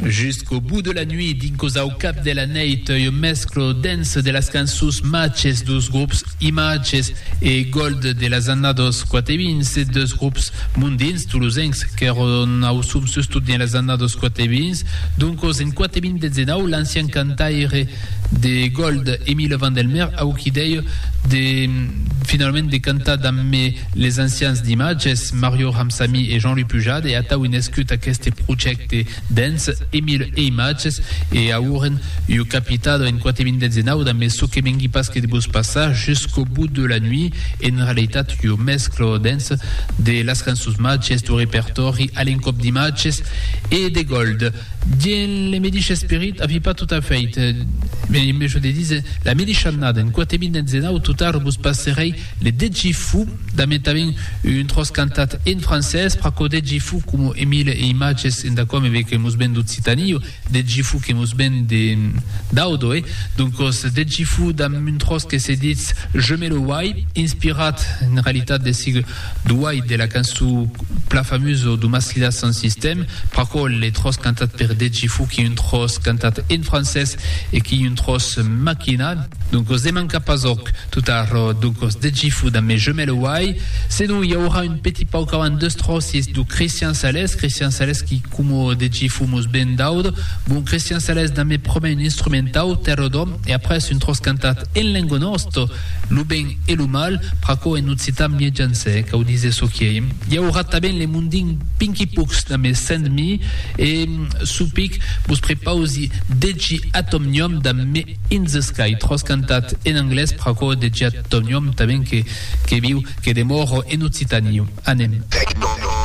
Jusqu'au bout de la nuit dins Cosa au cap de la nèit un mesclo dens de las cançons machs dus grops Images e Gold de las annados 4 e 20 se dus grops mondins tolosencs qu'èron au som sustot dins las annados 4 e 20 doncos en 4 e 20 19 l'ancian cantaire de Gold de Emile Vandelmer au qui dei de finalament de cantar damb me les ancians d'imatges, Mario Ramsamy e Jean-Louis Pujade e atau un escut aqueste projècte dens Emile e imatges e auren ua capitado en quate minutes e nau damb çò que mengui pas que de vos passar Jusqu'au bout de la nuit en realitat ua mescla dens de las cançons matges dau repertòri a l'encòp d'imatges e de Gold. Dins le medish esperit, avi pas tot a fait, me en mejo de diser, la medish annada, en quate min enzenau totar vos passerei le deci fou, damb entavent un tròç cantat en francés, pr'aquò deci fou coma e mil e imatges enda quò me ve que mos ven d'Occitanio, deci fou que mos ven de Daudo, e doncos deci fou damb un tròç que se ditz Je me le wai, inspirat en realitat de sigue Duai de la cançon pla famusa du Maslidas Sans Système, pr'aquò le tròç cantat per Deji foqui un tròç cantat en francés e qui un tròç maquinat. Doncos ne manca pas òc, tot arrò, doncos Deji fut damb mes jumèl uai, senon i aurà un petit pauc avant deus tròçis du Cristian Sales, Cristian Sales qui coma Deji fut mos ben daudo, bon Cristian Sales damb me prumèr un instrumentau, Terror d'Òm, e après un tròç cantat en lengo nòsto, Lo ben e lo mal, pr'aquò en occitan mie janse cau dise çò quiei. I aurà tanben le mondin Pinkypooks damb es cent mi e çò pic vos prepausi Deci Atomnium damb Me In The Sky, tròç cantat en anglés, pr'aquò Deci Atomnium tanben que viu, que demòro en occitaniu. Anem.